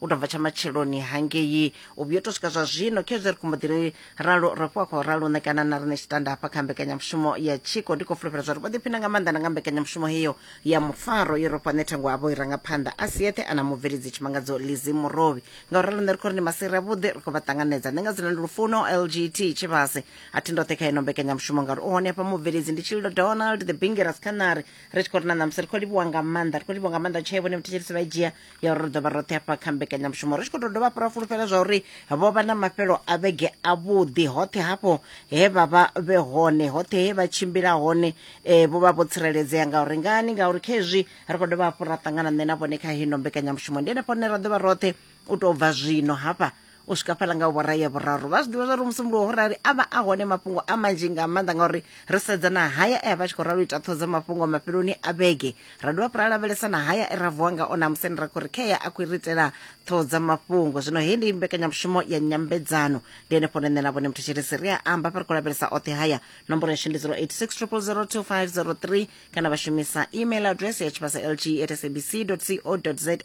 u tou bva tsha matsheloni hangei u vhuyo to swika zwa zwino khezwi ri khombo ḓiri ralo ro fhiwa khou ralo ṋekana na rine tshitanda hafha kha mbekanyamushumo ya tshiko ndi khou fulufhela zwa ri vho ḓiphina nga maanḓa na nga mbekanyamushumo heyo ya mufaro yo rofha nṋe thango avho i rangaphanḓa a si yeṱhe ana mubveledzi tshimangadzo lizi murovhi nga u ralo nṋe ri khou ri ndi masiri avhuḓi ri khou vha ṱanganedza nṋe nga dzina ndi lufuno lgt tshivhase a thi ndoṱhe kha ino mbekanyamushumo ngauri u hone hafha mubveledzi ndi tshililo donald the bingeras khanari ri tshi khou ri na ṋamusi ri khou livhuwa nga maanḓa ri khou livhuwa nga maanḓa tshee vhone vhathetshelisi vha dzhia ya uri ri dovha roṱhe hafha kha mbekanyamushumo ri tshi khou tou dovha hafhu ra fulufhela zwa uri vho vha na mafhelo a vhege avhuḓi hoṱhe hafho he vha vha vhe hone hoṱhe he vha tshimbila hone um vho vha vho tsireledzea ngauri ngani ngauri kha hezwi ri khou dovha hafhu ra ṱangana nṋe na vhone kha hino mbekanyamushumo ndi henefho hone ra ḓovha roṱhe u tou bva zwino hafha u swika fhala nga vhorai ya vhuraru vha zwi ḓivha zwauri musi muluwo rali a vha a hone mafhungo a manzhi nga maanḓa ngauri ri sedza na haya e a vha tshi khou ralo ita ṱhoho dza mafhungo mafheloni a vhege ra dovha fhura lavhelesa na haya e ra vuwa nga ona musi ni ra khou ri khea a khou ri itela ṱhoho dza mafhungo zwino hei ndi mbekanyamushumo ya nyambedzano ndi henefho nṋe na vhone muthu tshirisi ri a amba fha ri khou lavhelesa oṱhe haya nomboro yashu ndi 086 0002503 kana vha shumisa email address ya tshivhasa lg at sabc co za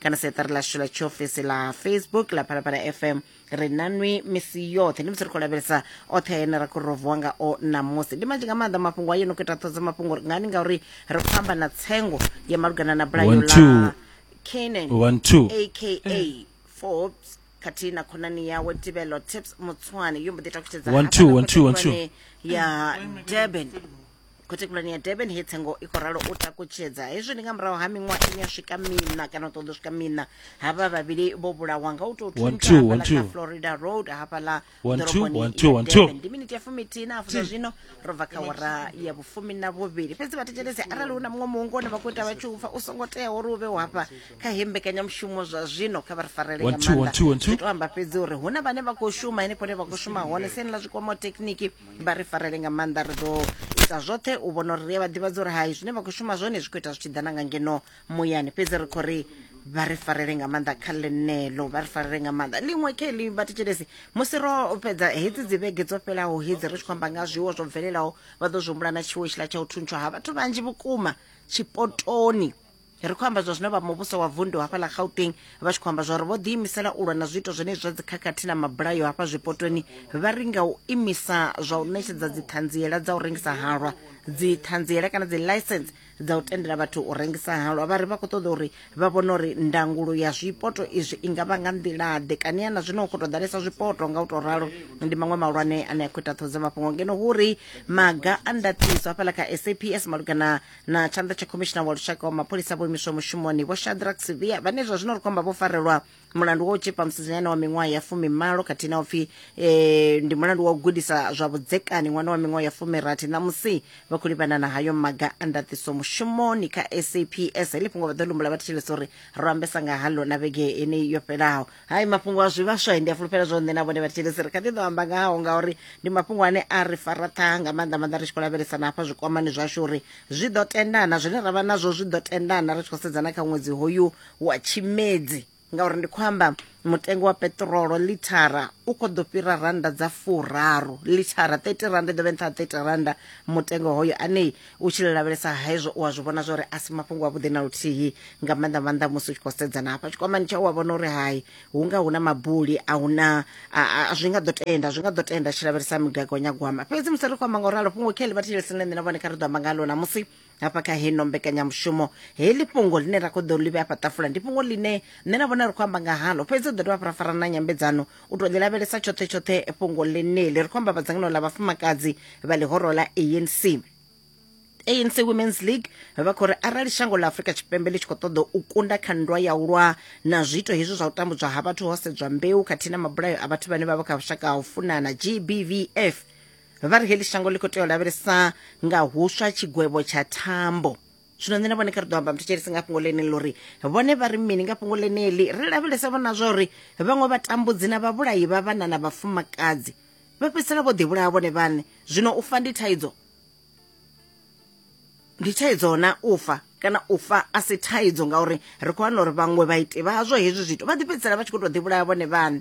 kana seṱari ḽashu ḽa tshiofisi ḽa facebook ḽa phalaphala fm ri na nwi misi yoṱhe ndi musi ri khou lavhelesa oṱhe ene ra khou rovuwa ngao ṋamusi ndi manzhi nga maanḓa mafhungo a yo no khou ita ṱhodzo mafhungo ri ngani ngauri ri khou amba na tsengo ya malugana na bulayo One, two. ḽa canan One, two. aka forbes khathihi na khonani yawe tibelo tips mutswane yo mbo ḓi takutshedza One, two, hafhaḽa one, two, one, two. khothetshedzwane ya durban khothe khulwane ya durban he tsengo i khou ralo u takutshedza hezwi ndi nga murahu ha miṅwaha ine ya swika mina kana u ṱoḓa u swika mina havha vhavhili vho vhulawa nga u tou thuntsha hafhaḽa kha florida road hafhaḽa ḓoroboni ya durban ndi miniti ya fumithihi na hafu zwa zwino ro bva kha wara ya vhufumi na vhuvhili fhedzi vhathetshelesi arali hu na muṅwe muhungu one vha khou ita vha tshi upfa u songo teaho uri u vhe hafha kha he mbekanyamushumo zwa zwino kha vha ri farele nga maanḓa zwi tou amba fhedzi uri hu na vhane vha khou shuma henefho hune vha khou shuma hone siani ḽa zwikwama thekhiniki vha ri farele nga maanḓa ri ḓo ita zwoṱhe u vhona uri ri a vha ḓivhadza uri hai zwine vha khou shuma zwone zwi khou ita zwi tshi ḓa na nga ngeno muyani fhedzi ri khou ri vha ri farele nga maanḓa kha ḽenelo vha ri farele nga maanḓa ḽiṅwe khe ḽi vhathetshelesi musi ro fhedza hedzi dzi vhege dzo fhelaho hedzi ri tshi khou amba nga zwiwo zwo bvelelaho vha ḓo zwi humbula na tshiwo tshiḽa tsha u thuntsha ha vhathu vhanzhi vhukuma tshipotoni ri khou amba zwa zwino vha muvhuso wa vundu hafha ḽa gauteng vha tshi khou amba zwauri vho ḓiimisela u lwa na zwiito zwenezwi zwa dzikhakhathi na mabulayo hafha zwipotoni vha ri nga u imisa zwa u ṋetshedza dziṱhanziela dza u rengisa halwa dziṱhanziela kana dzi license dza u tendela vhathu u rengisa halwa vha ri vha khou ṱoḓa uri vha vhone uri ndangulo ya zwipoto izwi i nga vha nga nḓilaḓe kani ana zwino khou tou ḓalesa zwipoto nga u tou ralo ndi maṅwe mahulwane ane a khou ita ṱhoho dza mafhungo ngeno hu ri maga a ndaṱiso hafhaḽa kha saps malugana na tshanḓa tsha khomishina wa lushaka wa mapholisa vho imiswa mushumoni vho shadrack sivia vhane zwa zwino ri khou amba vho farelwa mulandu wa u tshipa musidzanyana wa miṅwaha ya fumimalo khathihi na upfi eh, ndi mulandu wa u gudisa zwa vhudzekani ṅwana wa miṅwaha ya fumirathi ṋamusi vha khou livhana na hayo maga a ndaṱiso mushumoni kha saps heḽi fhungo vha ḓo lumbula vha thetshelesa uri ro ambesa nga haḽo na vhege yeneyi yo fhelaho hai mafhungo a zwivhaswa ndi a fulufhela zwo nṋe na vhone vhathetshelesi ri kha ḓi ḓo amba ngao ngauri ndi mafhungo ane a ri fara ṱhaha nga maanḓa maanḓa ri tshi khou lavhelesana hafha zwikwamani zwashu uri zwi ḓo tendana zwine ra vha nazwo zwi ḓo tendana ri tshi khou sedzana kha ṅwedzi hoyu wa tshimedzi ngauri ndi khou amba mutengo wa peṱirolo lithara u khou ḓo fhira rannda dza furaru lithara 30 rannda i ḓo vhe nṱha ha 30 rannda mutengo hoyo anei u tshi lavhelesa hezwo u a zwi vhona zwori a si mafhungo avhuḓi na luthihi nga maanḓa maanḓa musi u tshi khou sedzana hafha tshikwamani tshau wa vhona uri hai hu nga hu na mabuli a hu na zwi nga ḓo tenda zwi nga ḓo tenda tshi lavhelesa migagonyagwama fhedzi musi ri khou amba nga u ralo fhungo kheli vha thetshelesi na nṋe na vhone kha ri ḓo amba ngalo namusi hafha kha heno mbekanyamushumo heḽi fhungo ḽine ra khou ḓo ḽi vhe afha ṱafula ndi fhungo ḽine nṋe na vhona ri khou amba nga halo fhedzi ri ḓo dovha fara fara na nyambedzano u to ḽi lavhelesa tshoṱhe tshoṱhe fhungo ḽeneli ri khou amba vhadzangano ḽa vhafumakadzi vha ḽihoro ḽa anc anc women's league vha khou ri arali shango ḽa afurika tshipembe ḽi tshi khou ṱoḓa u kunda kha nndwa ya u lwa na zwiito hezwi zwa u tambudzwa ha vhathu ho sedzwa mbeu khathihi na mabulayo a vhathu vhane vha vha kha vhushaka ha u funana gbvf vha ri heḽi shango ḽi khou tea u lavhelesa nga huswa tshigwevho tsha thambo zwino nṋe na vhone kha ri ḓo amba muthetsheli si nga fhungo ḽeneḽi uri vhone vha ri mini nga fhungo ḽeneḽi ri lavhelesa vhona zwa uri vhaṅwe vhatambudzi na vhavhulayi vha vhana na vhafumakadzi vha fhedzisela vho ḓivhulaha vhone vhaṋe zwino u fa ndi thaidzo ndi thaidzo na u fa kana u fa a si thaidzo ngauri ri khou wana uri vhaṅwe vhaiti vhazwo hezwi zwithu vha ḓi fhedzisela vha tshi khou tou ḓivhulaha vhone vhaṋe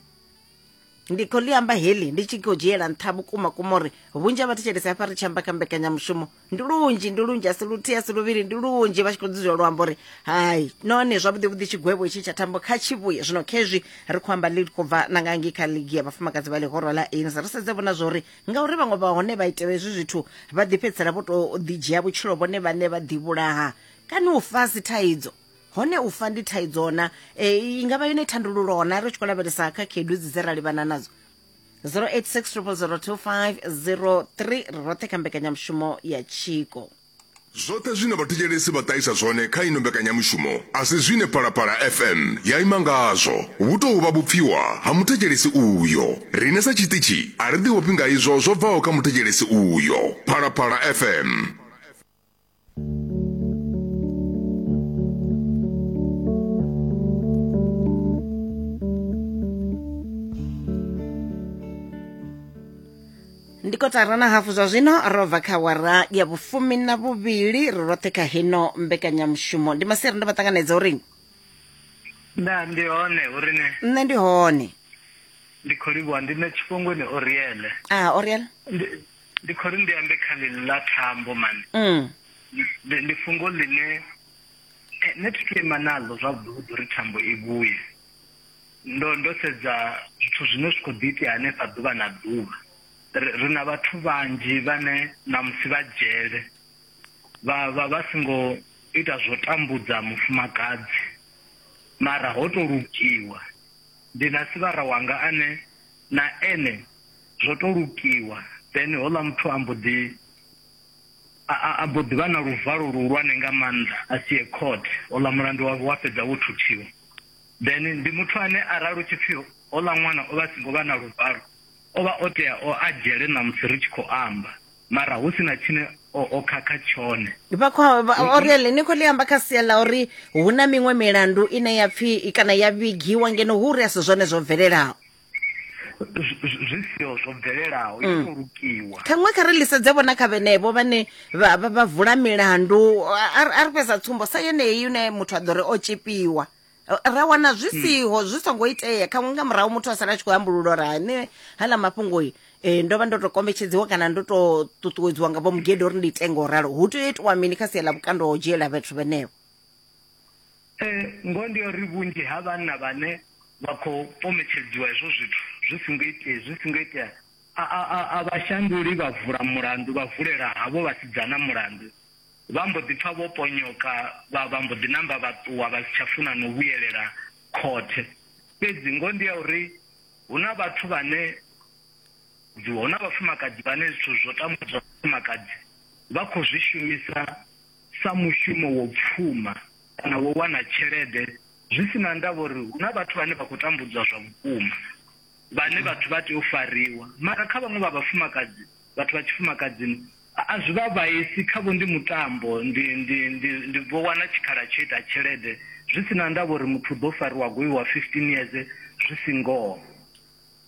ndi khou ḽi amba heḽi ndi tshi khou dzhiela nṱha vhukuma kuma uri vhunzhi ha vhathetshelesi hafha ri tshi amba kha mbekanyamushumo ndi lunzhi ndi lunzhi asi luthihi asi luvhili ndi lunzhi vha tshi khou dzudzula luambo uri hai none zwavhuḓi vhuḓi tshigwevho itshi tsha thambo kha tshivhuye zwino khezwi ri khou amba ḽi khou bva na nga ngei kha ligi ya vhafumakadzi vha ḽihoro ḽa anc ri sedze vhona zwa uri ngauri vhaṅwe vha hone vha itela hezwi zwithu vha ḓifhedzisela vho tou ḓidzhia vhutshilo vhone vhane vha ḓivhulaha kana u fasi thaidzo hone u fa ndi thaidzo-na e, i nga vha yone thandululo-na ri tshi khou lavhelesa kha khaedu dzi dze ra livhana nadzo 0860002503 ri roṱhe kha mbekanyamushumo ya tshiko Zwoṱhe zwine vhathetshelesi vha ṱahisa zwone kha ino mbekanyamushumo a si zwine Phalaphala FM ya ima ngazwo. Vhu tou vha vhupfiwa ha muthetshelesi uyo. Riṋe sa tshiṱitshi a ri ḓihofhi nga izwo zwo bvaho kha muthetshelesi uyo. Phalaphala FM. ndi kotara na hafu zwa zwino ro bva kha wara ya vhufumi na vhuvhili ri roṱhe kha hino mbekanyamushumo ndi maseri ndo vha ṱanganedza uri nda ndi hone uri ne nṋe ndi hone ndi khou livhuwa ndi na tshifhungoni oriele a oriel Ndi- ndi khou ri ndi ambe kha ḽi ḽa thambo mani mm. ndi fhungo ḽine eh, nṋe thi ima naḽo zwavhuḓi uri thambo i vhuye ndo ndo sedza zwithu zwine zwi khou ḓi itea hanefha ḓuvha na ḓuvha ri na vhathu vhanzhi vhane ṋamusi vha dzhele vha vha vha songo ita zwo tambudza mufumakadzi mara ho to lugiwa ndi na sivhara wanga ane na ene zwo to lukiwa then hola muthu ambo ḓi a mbo ḓi vha na luvalo luhulwane nga maanḓa a si ye court hola mulandu wavho wa fhedza wo thuthiwa then ndi muthu ane arali u tshi pfhi hola ṅwana o vha a singo vha na luvalo o vha o tea o a dzhele na musi ri tshi khou amba mara hu sina tshine o khakha tshone vha kho uri le ni kho ḽi amba kha sia ḽa uri hu na miṅwe milandu ine ya pfhi kana ya vhigiwa ngeno hu uri a si zwone zwo bvelelaho zwi siho zwo bvelelaho i mm. khou lukiwa ṱhaṅwe kha ri lisedze vhona kha vhenevho vhane vha vula milandu a ri fhedza tsumbo sa yeneyi une muthu a ḓo ri o tshipiwa ra wana zwi mm. siho zwi songo itea khaṅwe nga murahu muthu a sala a tshi khou ambululo uri hane hala mafhungoi um ndo vha ndo to kombetshedziwa kana ndo to ṱuṱuwedziwa nga vho mugede uri ndi ite ngo ralo hu tea u itiwa mini kha sia ḽa vhukando ho dzhiela vhathu vhenevho Ee, ngoho ndi ya uri vhunzhi ha vhanna vhane vha khou pometshedziwa hezwo zwithu zwi songo itea zwi songo itea a a a a vha shanduli vha vula mulandu vha vulela havho vhasidzana mulandu vha mbo ḓi pfa vho ponyoka vha vha mbo ḓi namba vha ṱuwa vha si tsha funa no vhuyelela khothe fhedzi ngoho ndi ya uri hu na vhathu vhane hu na vhafumakadzi vhane zwithu zwo tambudzwa vhafumakadzi vha khou zwi shumisa sa mushumo wo pfuma kana wo wana tshelede, zwi si na ndavha uri hu na vhathu vhane vha khou tambudzwa zwa vhukuma, vhane vhathu vha tea u fariwa. Mara kha vhaṅwe vha vhafumakadzi, vhathu vha tshifumakadzini, a a zwi vha vhaisi, khavho ndi mutambo, ndi, ndi, ndi, ndi vho wana tshikhala tsho ita tshelede, zwi si na ndavha uri muthu u ḓo fariwa a goiwa 15 years, zwi si ngoho.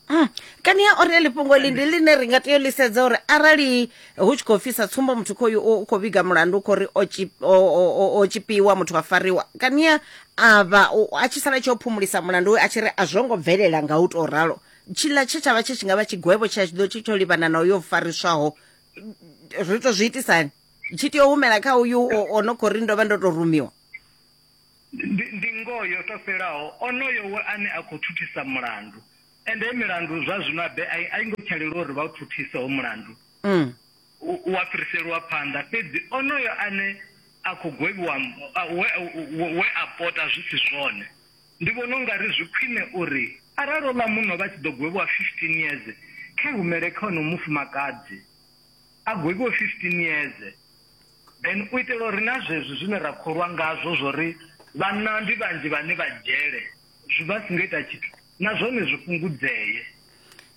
Mm. kani ya ore lifhungo ḽi ndi ḽine ri nga tea u ḽi sedza uri arali hu tshi khou fisa tsumbo muthu khoyu u khou vhiga mulandu u khou ri o tshi- o- o- o- o tshipiwa muthu wa fariwa kani ya a vha u- a tshi sala tshi o phumulisa mulandu we a tshi ri a zwo ngo bvelela nga u tou ralo tshiḽa tshe tsha vha tshe tshi nga vha tshigwevho tshe a tshi ḓo tshi tsho livhana na uyo fariswaho ri tou zwi itisani tshi tea u humela kha uyu o- o no khou ri ndo vha ndo tou rumiwa Ndi, ndi ngoho yo to fhelaho, onoyo we ane a khou thuthisa mulandu. Ende milandu zwa zwino a be a i- a i ngo tsha leluwa uri vha u thuthise ho mulandu. Mm. u- u a fhiriselwa phanḓa fhedzi onoyo ane a khou gwevhiwa m- a- we, we- we a pota zwi si zwone ndi vhona u nga ri zwi khwine uri arali oḽa muno vha tshi ḓo gwevhiwa 15 years kha humele kha ono mufumakadzi a gwevhiwe 15 years Then u itela uri na zwezwi zwine ra kholwa ngazwo zwo ri vhanna ndi vhanzhi vhane vha dzhele zwi vha singo ita tshithu na zwone zwi fhungudzee.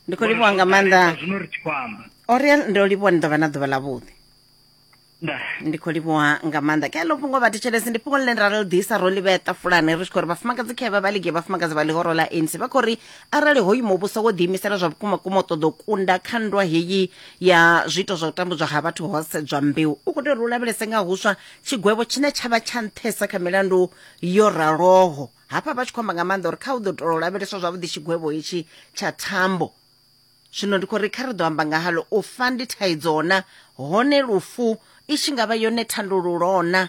Ndi khou livhuwa nga maanḓa. Zwino ri tshi khou amba. Oriel ndo livhuwa ni ḓo vha na ḓuvha ḽa vhuḓi. ndi khou livhuwa nga maanḓa ke ḽo fhungo vhathetshelesi ndi fhungo ḽine ra ḽi ḓisa ro ḽi vhea ṱafulani ri tshi khou ri vhafumakadzi khevha vha ligi vhafumakadzi vha ḽihoro ḽa anc vha khou ri arali hoyu muvhuso wo ḓiimisela zwa vhukuma kuma u ṱoḓa u kunda kha nndwa heyi ya zwiito zwa u tambudzwa ha vhathu ho sedzwa mbeu u khou tea uri u lavhelese nga huswa tshigwevho tshine tsha vha tsha nṱhesa kha milandu yo raloho hafha vha tshi khou amba nga maanḓa uri kha u ḓo tou lavheleswa zwavhuḓi tshigwevho hetshi tsha thambo zwino ndi khou ri kha ri ḓo amba nga halo u fa ndi thaidzo na hone lufu i tshi nga vha yone thandululo na